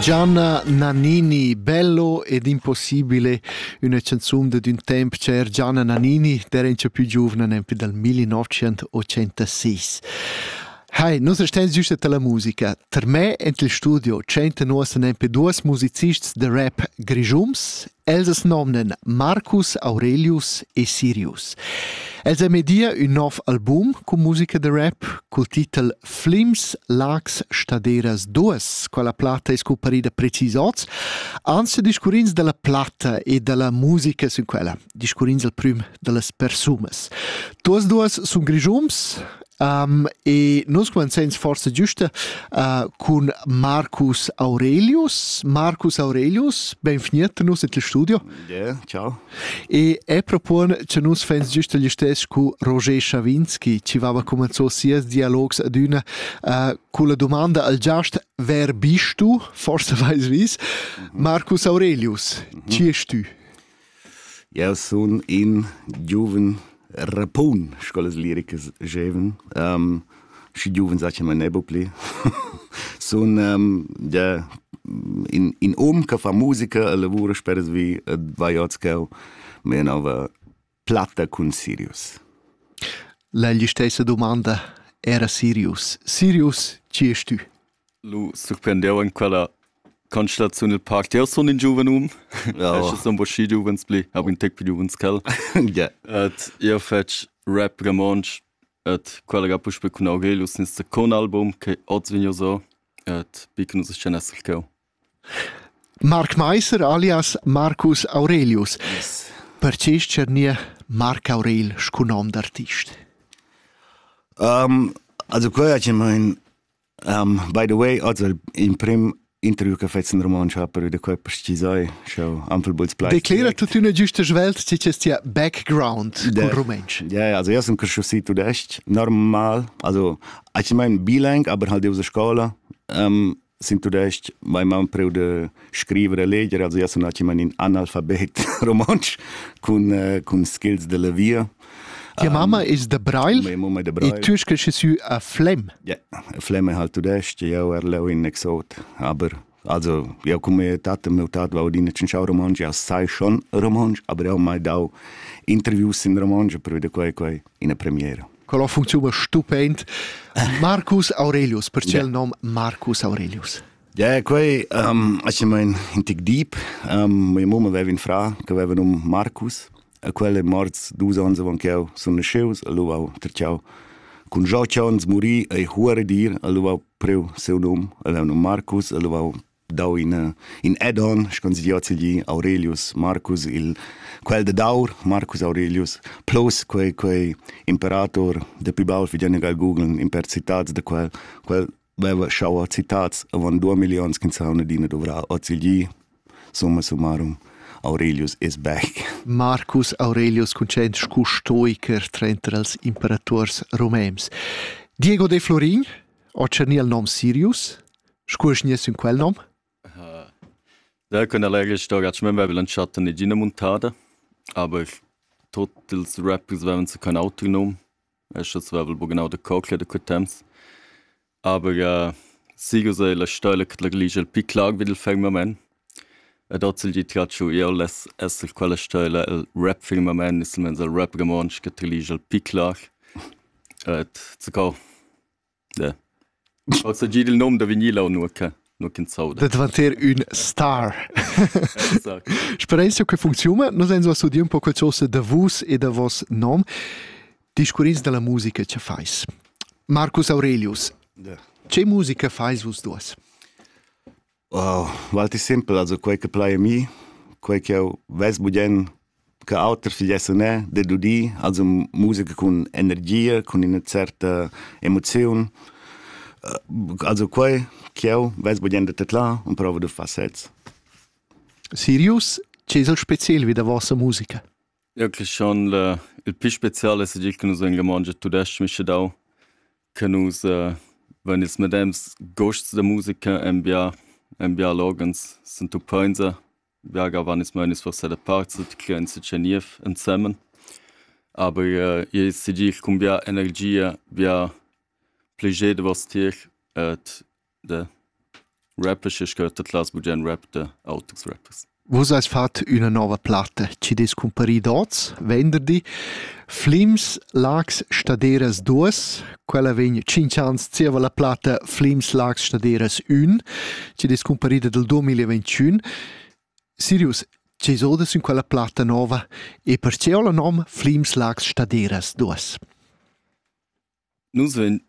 Gianna Nannini, bello ed impossibile, üna canzun dad ün temp cher Gianna Nannini, der in più giuvna nempi dal 1986. Hai, nus estens giusta la musica. Per me en il studio tschenta nus nempe duas musicists de rap grigiums, els nomnen Marcus Aurelius e Sirius. Els a media un nov album con musica de rap col titel Flims, Lags, Staderas duas, quella platta è scumparida precis oz, anzi discurrins della platta e della musica sin quella, discurrins al prüm dellas persunas. Tuas duas sun grigiums um, e nus comenzens forse giusta uh, cun Marcus Aurelius. Marcus Aurelius, benveniet nus in il studio. Yeah, ciao. E è propon che nus fans giusto gli stess cu Roger Schawinski, ci vava comenzò sias dialogs ad una uh, cu la domanda al giast wer bist du? Forse vais vis. Mhm. Marcus Aurelius, mhm. ci es tu? Ja, sun in giuven Rapun, sco las liricas gievan. schi giuven zaccha mai nebba pli. sun gia in, in um che fa musica e lavura spersvi ed vai oz cheu mia nova platta cun Sirius. La stessa domanda era Sirius. Sirius, chi est tü? Lu surprendiu en quella constataziun il parc. Jeu sun in giuven um, oh. sun bo schi giuvens pli, hab in tec pli giuvens ch'el. yeah. Et jeu fetsch rap romontsch et quella ga puspe cun Aurelius in second album che oz vegn so et bi che nus scen esser cheu. Marc Meiser alias Marcus Aurelius. Yes. Perciò nie Marc Aurel scu nom d'artist? Um, also quello è in Um, by the way, oz il imprim interview che fetz in romansch ha per da quei pestisai schau anfel buls plai declera tutto una giusta svelt ti c'è tia background con rumantsch ja ja also jas un cresciusi tudest normal also ich mein bilang aber halt diese scola um, sin tudest mein mam preu de scrivere leggere also jas un ich mein in analfabet romansch con uh, con skills della via Tia mamma es da Brail Mia mamma è da Brail. E tu sche sü a Flem? Ja, Flem è halt tudest, jau er leu in exot, aber also jau cum mia tat e mio tat va odina cinciau romansch, ja sai schon romansch, aber jau mai dau interviews in romansch per veder quai quai ina premiera. Quella funcziona stupend. Marcus Aurelius, per il nome Marcus Aurelius. Ja, quei um, ich mein in tic deep. Um, mia mamma aveva in fra che aveva num Marcus e quel è morts dus onns avant ch'jeu sun nasceus, allura ho trachau cun joc onns muri e huare dir, allura ho priu siu num, el è un Marcus, allura ho dau in, in add-on, schon si diozzi gli Aurelius Marcus, il, quel de Daur, Marcus Aurelius, plus quei, quei imperator de più baul, fi già negal googeln, impersitads de quel, quel veva schau a citats avon due milioni ch'ins ha adina dovrà ozilgi summa summarum Aurelius es back. Marcus Aurelius conced scu stoiker trenter als imperators romems. Diego de Florin, o cerni al nom Sirius, scu es nies in quel nom? Da kun er leger stoga att men väl en chatten i gina montada, aber tot ils rappers väven så kan autonom vevel buc genau da cocla da quei temps aber äh, sigo sei la stoila che la ligia pi clar vid il firmament ed ozil gi tratschu iau less esser quella stoila el rap firmament is mens el rap romontsch che la ligia pi clar et zacco Da. Ossa gid il nom da vinila o nua che nua ch'ins sauda. Da dvanter ün star. Exact. Spereis che funcziuna? Nus ein so studiu un po quel sosa da vus e da vos nom. Discurrins dalla musica che fais. Marcus Aurelius, Ja. che musica fais vus duas? Wow, valti simpel, also quei che plai a mi, quei che eu vess budien che auter figliesse ne dedudì, also musica cun energia, cun ina certa emoziun. Also quei che eu vess budien da tedlar und provo da far sez. Sirius, che es el speciel vi da vossa musica? Eu cresch schon le il pü special es tgi che nus vegn romontsch e tudesch mische dau che nus vain ils medems gusts da musica en bia en bia loghens s'entupainsa bia gavan ils meunis forsa da parts tgi che ins tga niev ensemen aber i es tgi cun bia energia bia plascher da voss tier ed de rappers e scurta class bugen rap de autos rappers Vus eis fat üna nova platta chi des cumparit oz, venderdi. Flims, Lax, Staderas 2. Quella vegn 5 ans zieva la platta Flims, Lax, Staderas 1, chi des cumparida del 2021. Sirius, che esodas in quella platta nova e perche ho la nom Flims, Lax, Staderas 2? Nus vein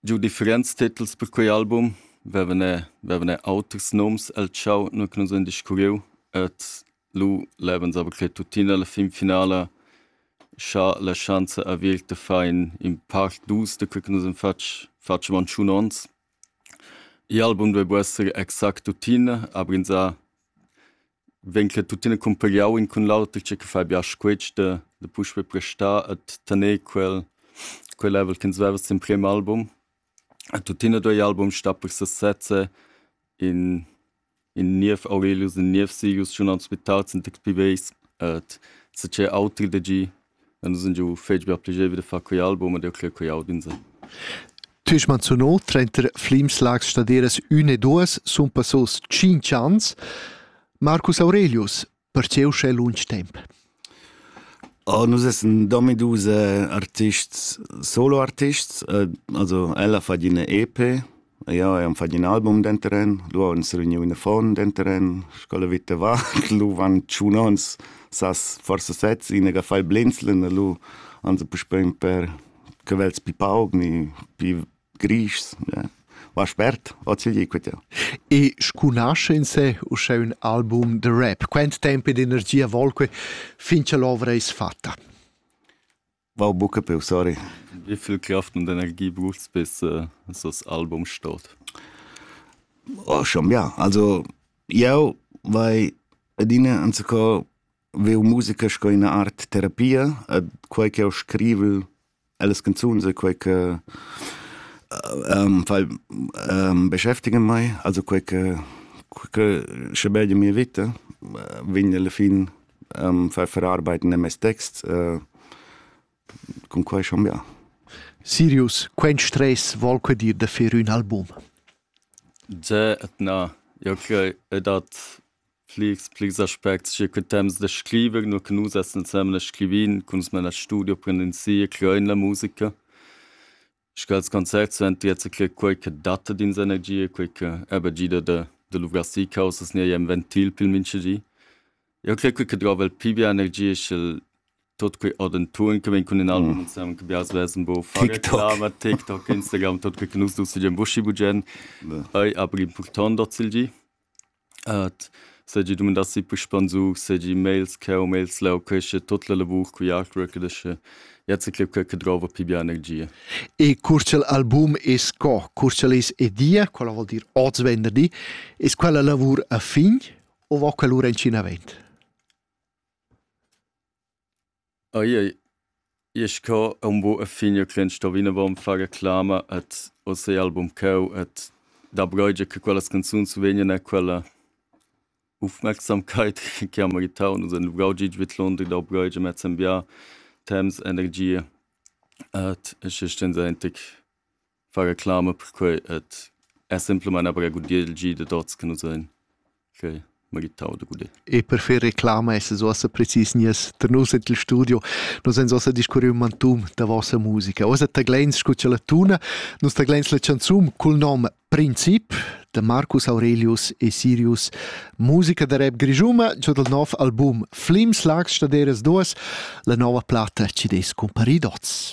giu differents titels per quei album. Vevan e vevan e auters nums el tschau, nua che nus vein discurriu. Ed lu levan saver che tuttina la finfinala schar la schanza averta far in in part dus da quei che nus han fatg fatg avon tschun onns. Igl album duei buc esser exact tuttina, aber ins ha vegn che tuttina cumpagliau in cun l'auter tge che fa biasch questa da puspe prestar e tener quel quel level ch'ins veva sin prem album e tuttina doi album sta per sesezze in in niev Aurelius in niev Sirius schon ans mit tausend expibes et se ce auter de gi Dann sind ja fetg be piacevole da far quei album ed jeu cler quei aut insai. Tü hast menzionau trenta Flimslags staderas üna e duas sun passos tschinch ans. Marcus Aurelius, perche uschè lunsch temp? Oh, nus essan dominus artists, solo artists. Also, ella fa ina EP Ja, eir fat ün album denteren, lura on s'reuniu in affon denteren, sco la vita va, lu van tschun ons, sas forsa sez, inegia fai blinzlen, a lu ans puspein per cavels pi pauc ni pi grischs, ja. Va spert, ozilgi quetieu. E scunasce in se uschè ün album de rap, quant tempo ed energia volque fin cha l'ovra es fatta? Wow, buca peu, sorry. Wie viel Kraft und Energie braucht's, bis äh, so das Album steht? Oh, schon, ja. Also, eu, vai adina anzocò veu musica sco ina art terapia, e quei che eu scrivo, alles canzuns, e quei che ähm, fai ähm, beschäftigen mai, also quei che, che sche belli mia vita, vegn alla fin far far arbeit ne mes texts cun quei chambiar Sirius quens tres vol que dir da fer ün album Ze na ja okay dat pligs pligs aspects che que temps da scriver nur que nus essen semle scrivin kun's meiner studio prend in sie klein la musica sch'els concerts san tier che quei che datta d'ins energia, quei che eba gida da, da luvrar si caussas ni ei en ventil pil mintgagi. Eu crer quei che drova el pi bia energia sch'el tot quei adenturen che vegn cun in album insomma che biars vessen bo fare TikTok. reklama, TikTok, Instagram, tot quei che nus dus seigien buschi bugen. Ei aber important dazil gi. seigi dumandassi puspei zug seigi mails cheu mails leu quescha tut la lavur cugl artwork ed ascha jazz e clip quei che drova pi bia energia. E cur ch'il album è sco, cur ch'el es edia, quella vuol dir oz venderdi, es quella lavur a fin o va quella lura in cin avent? Ai ai, i es co ün bun e fin io crend sto vinavant far reclama ad hoz album ch'eu et da bröider che quellas canzuns vegnan e quella ufmerksamkeit chi ha meritau nus haun luvrau gid vidlunder da bröider mez in bià temps, energia, ed es gist stendaintic. far reclama per quei ed es simplamain aber a gudir il gi dad hoz che nus hain que meritau da gudir. E per fer reclama essas uossa precis nies tar nus en il studio. Nus ens uossa discurriu mantun da vossa musica. Uossa tagleins scu cha la tuna, nus tagleins la chanzun cul nom Princip da Marcus Aurelius e Sirius, musica da rap grischuma, giò dal nov album Flims Lags Staderas 2, la nova platta ci des cumparidots.